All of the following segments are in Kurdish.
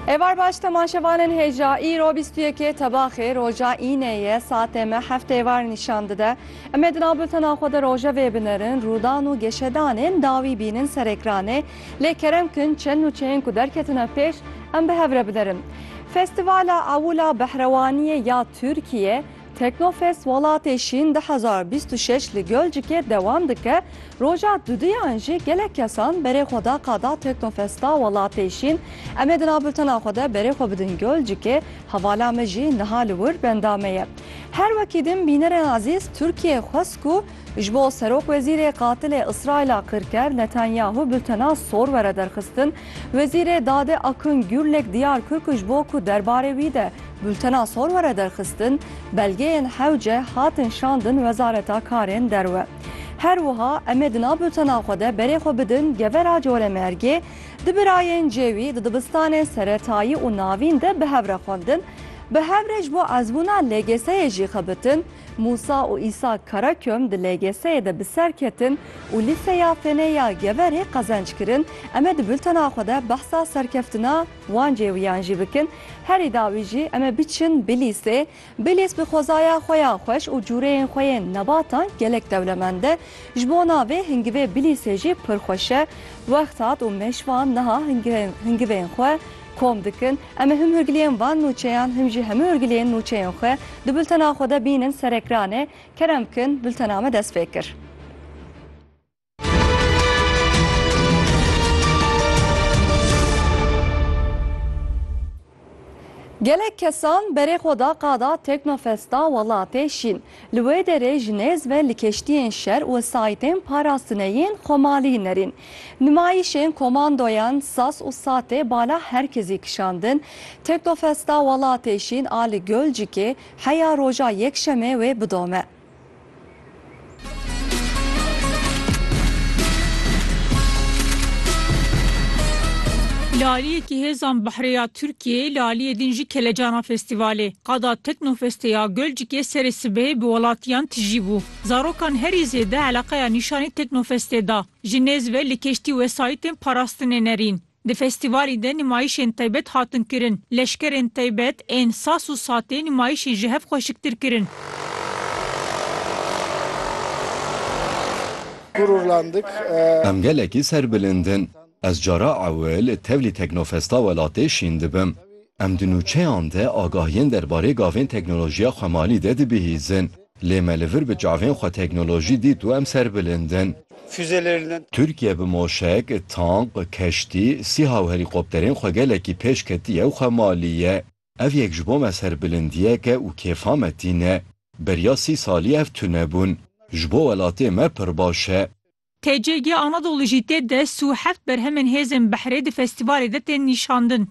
Êvar baş temaşevanên hêja îro bîst û yekê tebaxê roja înê ye saetê me heft êvar nîşan dide. Em ê di nav bultena xwe de rojevê binerin, rûdan û geşedanên dawî bînin ser ekranê lê kerem kin çend nûçeyên ku derketine pêş em bi hev re binerin. Festîvala Ewil a Behrewaniyê ya Tirkiyê, Teknofest Welatê Şîn du hezar bîst û şeş li Gölcikê dewam dike, roja duduyan jî gelek kesan berê xwe da qada Teknofesta Welatê Şîn. Em ê di nav bultena xwe de berê xwe bidin Gölcikê, hevala me jî niha li wir benda me ye. Her wekî din bînerên ezîz Tirkiyeyê xwest ku Ji bo serokwezîrê qatilê Îsraîla kirker Netanyahu bultena sor were derxistin, Wezîrê Dadê Akın Gürlek diyar kir ku ji bo ku derbarê wî de bultena sor were derxistin, belgeyên hewce hatin şandin Wezareta Karên Derve. Her wiha em ê di nav bultena xwe de berê xwe bidin Gevera Colemêrgê, di birayên cêwî di dibistanên seretayî û navîn de bi hev re xwendin, bi hev re ji bo ezbûna LGS'yê jî xebitin, Mûsa û Îsa Karaköm di LGS'yê de bi ser ketin û Lîseya Fênê ya Geverê qezenc kirin. Em ê di bultena xwe de behsa serkeftina wan cêwîyan jî bikin. Herî dawî jî em ê biçin Bilîsê. Bilîs bi xwezaya xwe ya xweş û cûreyên xwe yên nebatan gelek dewlemend e. Ji bona vê hingivê Bilîsê jî pir xweş e. Wext hat û mêşvan niha hingivên xwe kom dikin. Em ê him hurgiliyên van nûçeyan him jî hemû hurgiliyên nûçeyên xwe di bultena xwe de bînin ser ekranê, kerem bikin bultena me dest pê kir. Gelek kesan berê xwe da qada Teknofesta Welatê Şîn. Li wê derê ji nêz ve li keştiyên şer û saytên parastinê yên Xomalî nerîn. Nimayîşên komandoyan sas û satê bala her kezî kişandin. Teknofesta Welatê Şîn a li Gölcikê heya roja Yekşemê wê bidome. Li aliyekî hêzan Behrê ya Tirkiyeyê li aliyê din jî kelecana festîvalê. Qada Teknofestê ya Gölcikê serê sibehê bi welatiyan tijî bû. Zarokan herî zêde eleqeya nîşanî Teknofestê da. Ji nêz ve li keştî wesayîtên parastinê nerîn. Di festîvalî de nimayîşên taybet hatin kirin. Leşkerên taybet ên sas û satê nimayîşî ji hev xweşiktir kirin. Gururlandık. Em gelekî serbilind in. Ez cara ewil tevlî teknofesta welatê şîn dibim. Em di nûçeyan de agahiyên derbarê gavên teknolojiya xwemalî de dibihîzin, lê me li vir bi çavên xwe teknolojî dît û em serbilind in. Tirkiye bi moşek, tank, keştî, sîha û helîkopterên xwe gelekî pêş ketiye û xwemalî ye. Ev yek ji bo me serbilindiyek e û kêfa me tîne. Beriya sî salî ev tune bûn. Ji bo welatê me pir baş e. TCG Anadolu jî tê de sî û heft berhemên hêzên Behrê di festîvalê de tên nîşandin.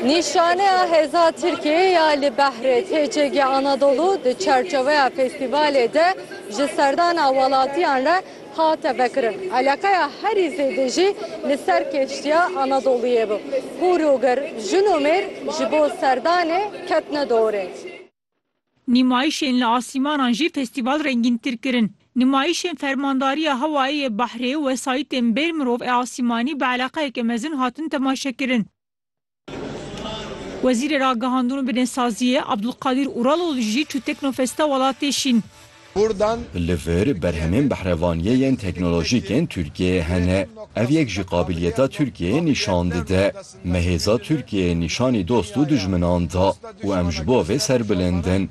Nîşaneya hêza Tirkiyeyê ya li Behrê, TCG Anadolu di çerçeweya festîvalê de ji serdana welatiyan re hate vekirin. Eleqeya herî zêde jî li ser keştiya Anadoluyê bû. Hûr û gir, jin û mêr ji bo serdanê ketine dorê. Nîmayîşên li asîmanan jî festîval rengîntir kirin. Nîmayîşên Fermandariya Hewayê yê Behrê û wesayîtên bêr mirov ê asîmanî bi eleqeyeke mezin hatin temaşekirin. Wezîrê Ragihandin û Binêsaziyê Abdulkadîr Uraloğlu jî çû Teknofesta Welatê Şîn. Kurdan. Li vir berhemên behrevaniyê yên teknolojîk ên Tirkiyeyê hene. Ev yek jî qabiliyeta Tirkiyeyê nîşan dide. Me hêza Tirkiyeyê nîşanî dost û dijminan da û em ji bo vê serbilind in.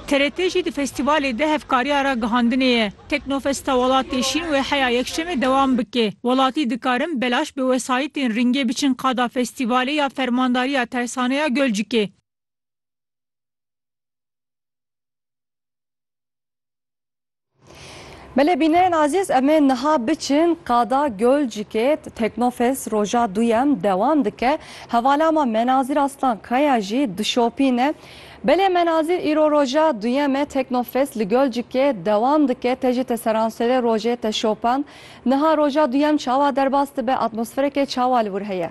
TRT jî di festîvalê de hevkariya ragihandinê ye. Teknofesta Welatê Şîn wê heya Yekşemê dewam bike. Welatî dikarin belaş bi wesayîtên rîngê biçin qada festîvalê ya Fermandariya Tersaneya Gölcikê. Belê bînerên azîz em ê niha biçin qada Gölcikê Teknofest roja duyem dewam dike. Hevala me Menazîr Aslan Kaya jî dişopîne. Belê Menazîr îro roja duyem e Teknofest li Gölcikê dewam dike. Te jî te seranserê rojê te şopand. Niha roja duyem çawa derbas dibe, atmosferekê çawa li wir heye?